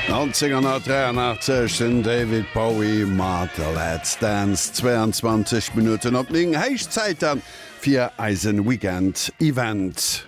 1983, den David Bowie mat Let's Dance, 22 Minutten op 9. Héich Zäit dann fir eise Weekend Event.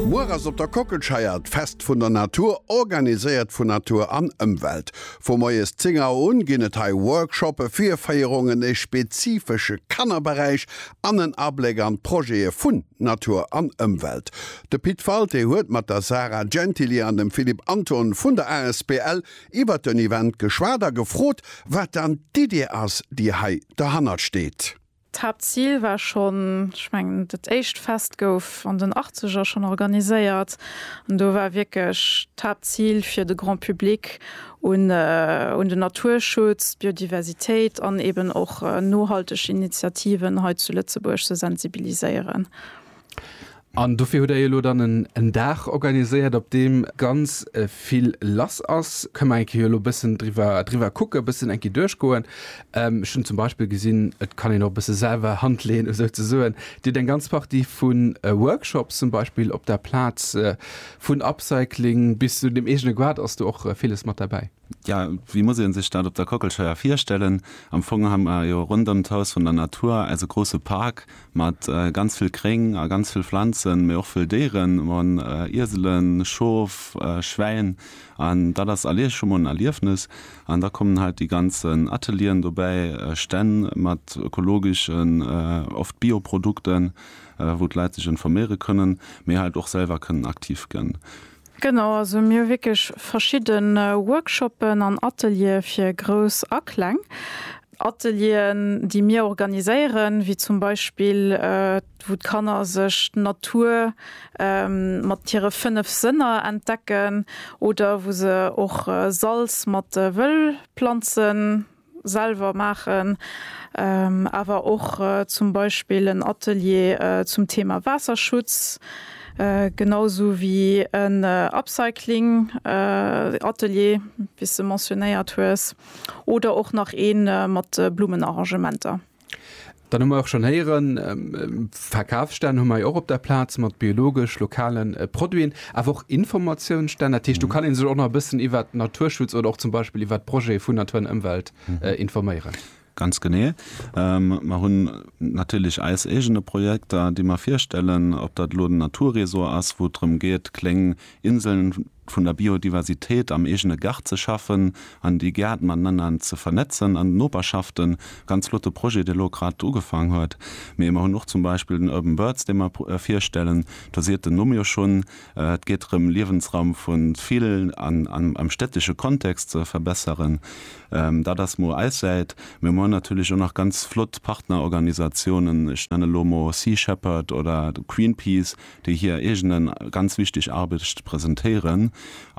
Muer ass op der Kockelscheier d'Fest vun der Natur, organiséiert vun Natur an Ëmwelt. Vu moies 10 Auer un ginn et hei Workshoppe, Virféierungen, e spezifesche Kannerberäich an en Abléck an d'Projete vun. Natur an Ëmwelt. De Pit Walté huet mat der Sarah Gentili an dem Philippe Anthon vun der asbl iwwert den Event geschwat a gefrot, wat dann d'Idee ass, déi hei derhannert steet. D'Haaptzil war schonn, ech mengen, dat éischt Fest gouf an den Achtzeger schonn organiséiert an do war wierklech d'Haaptzil, fir de Grand Public un den Naturschutz, d'Biodiversitéit an eben och nohalteg Initiativen hei zu Lëtzebuerg ze sensibiliséieren. An dofir hutt Der jo elo dann en Dag organiséiert, op deem ganz vill lass ass. Kënne mer eng Kéier jo elo e bëssen driwwer kucken, e bëssen eng Kéier duerchgoen? Ech hunn zum Beispill gesinn, et kann een och e bësse selwer Hand leeën esou ze soen. Dir hutt eng ganz Partie vu Workshops zum Beispill op der Plaz Vun Upcycling bis zu dem eegene Goart ass do och villes mat derbäi. Jo, wéi muss ee sech dat op der Kockelscheier virstellen? Am Fong hu mer jo ronderëm d'Haus vun der Natur eise grousse Park mat ganz vill Gréng a ganz vill Pflanzen, mee och vëll Déieren, Ieselen, Schof, Schwäin an dat ass alleguer scho mol en Erliefnes. An da kommen halt déi ganzen Atelieren dobäi, Stänn mat ökologeschen, oft Bioprodukten Einfach wou d'Leit sech informéiere kënnen, mee halt och selwer kënnen aktiv gen. Genau, also mir hu wierklech verschidden Workshoppen an Ateliere fir Grouss a Kleng. Atelieren déi mir organiséieren, wéi zum Beispill wou d'Kanner sech d'Natur mat hire 5 Sënner entdecken oder wou se och Salz mat Wëllplanzen selwer maachen, awer och zum Beispill en Atelier zum Thema Waasserschutz, genau esou wéi en Upcycling Atelier, wéi s de mentionéiert hues, oder och nach ee mat Blummenarrangementer. Dann hu mer och schonn héieren, Verkafsstänn hu mer jo och op der Plaz mat biologesch, lokale Produiten, awer och Informatiounsstänn. Dat heescht, do kann ee sech och nach e bëssen iwwert Naturschutz oder och zum Beispill iwwert d'Projete vun Natur an Ëmwelt informéieren. Ganz genee. Mer hunn natierlech eis eegene Projekter, déi mer virstellen, ob dat elo den Naturresort ass, wou et drëm geet, kléng Inseln vun der Biodiversitéit am eegene Gaart ze schaffen an déi Gäert matenanner ze vernetzen an d'Noperschaften, ganz flotte Projet, dee elo grad ugefaang huet. Mee mer hunn och zum Beispill den Urban Birds, dee mer virstellen, do seet den Numm jo schonn, et geet drëm Liewensraum vu vill am städtesche Kontext ze verbesseren. Dat ass mol eis Säit, mä mer hunn natierlech och nach ganz flott Partnerorganisatiounen, ech nenne lo mol Sea Shepherd oder Greenpeace, déi hir eegene ganz wichteg Arbecht presentéieren.